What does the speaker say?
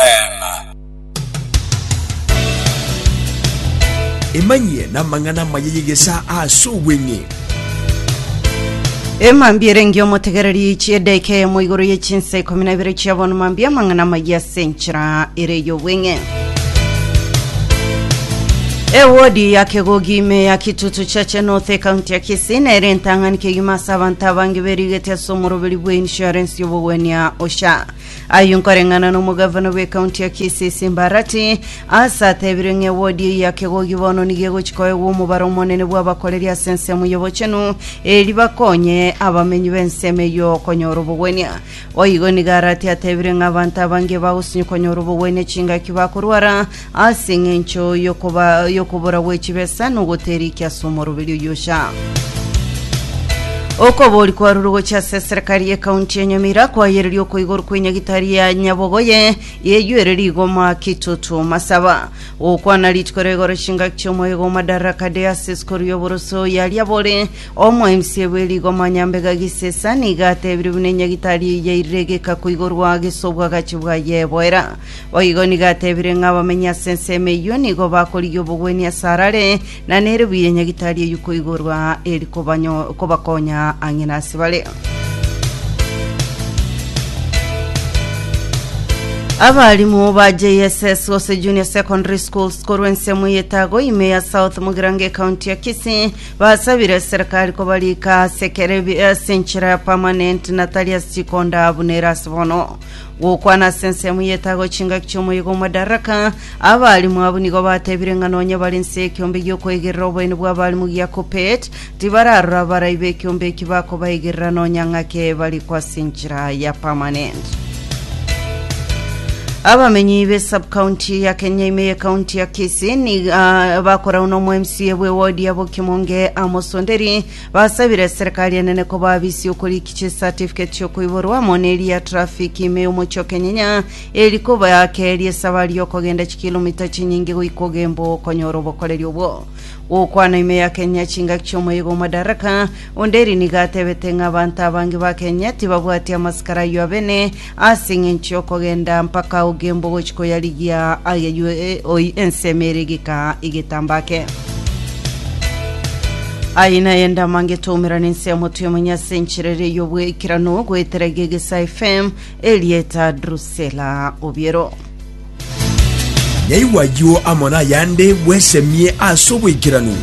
Eema. Emanyie namang'ana amaya y'egesaa ase obweng'e. Emambia ere engiya omotegereri ichia edaika eyemo igoro ye chinsa ikomi na ibere chia bono mambia amang'ana amaya ase enchera ere ey'obweng'e. Ewodi ya Kegogi ime ya Kitutu Church North ekaunti ya Kisii nere entang'ani kegima ase abanto abange berigete ase omoroberi bwa insurance y'obogwenia OSHA. Ayio nkoreng'ana n'omogavana bw'ekaunti ya Kisii ase Mbarati ase atebire ng'a ewodi eyio ya Kegogi bono nigo egochi koegwa omobaro omonene bw'abakoreri ase ensemo y'obochenu eeri bakonye abamenyi b'ensemo eyio konyora obogwenia. Boigo nigo Arati atebire ng'a abanto abange bagosinyi konyora obogwenia chingaki bakorwara Ase engencho yokoba yokobora gwe chibesa nogoteriki ase omoroberi oyosha. Okobori kwarure gochia ase serikali ye kaunti ya Nyamira kwayereria oko igoro kwe nyagitari ya Nyabogoye yeyuere rigoma kitutu masaba gokwana rituko ria igoro chingaki chiomoyego Madaraka Day ase esikuru y'oboroso yaria bore omo MCA bwe rigoma Nyambega Gisesa niga atebire buna enyagitari yairire egeka koigorwa gesobwagachi bwa yeboera Boigo nigo atebire ng'a abamenyi ase ensemo eyio nigo bakorigia obogwenia ase arare, na neribuya enyagitari eyio koigorwa eri kobanyo- kobakonya ang'e nase bare. Abarimu ba JSS gose Junior Secondary Schools korwa ensemo ya Etago ime ya South Mugirango ekaunti ya Kisii basabire serikali kobarika ase ekero ebi- ase enchera ya permanent na tari ase chikonda buna ere ase bono. Gokwana ase ensemo y'etago chingaki chi'omoyega o Madaraka, abalimu abwo nigo batebire ng'a nonya bare inse y'ekiombe gi'okoegerera oboene bw'abalimu gia Kuppet, tibararora abarai b'ekiombe eki bakobaegerera nonya ng'ake barikwo ase enchera ya permanent. Abamenyi be subcounty ya Kenyaime ye county ya Kisii ni ah, bakorau nomo MCA bwe ward ya Bokimonge Amos Onderi Basabire serikali enene kobabisia okoriki chi certificate chiokoiborwa amo ne eria traffic ime y'omochie o Kenyenya eri kobakeria esabari y'okogenda chikilomita chinyinge goika ogembo okonyora obokoreri obwo. Gokwana ime ya Kenya chingaki chi'omoyega o Madaraka, Onderi nigo atebete ng'a abanto abange ba Kenya tibabwati amasikara ayio abene Ase engencho y'okogenda mpaka ogembo gochi koyarigia ayaywe oi ensemo ere gika igetamba ake. Aye naye ndamange toumera nensemo tuemonye ase enchera ere y'obwekerano goetera gegesa FM erieta Drusela Obiero. Yaigwa ayio amo nayande bwesemie ase obwekeranu.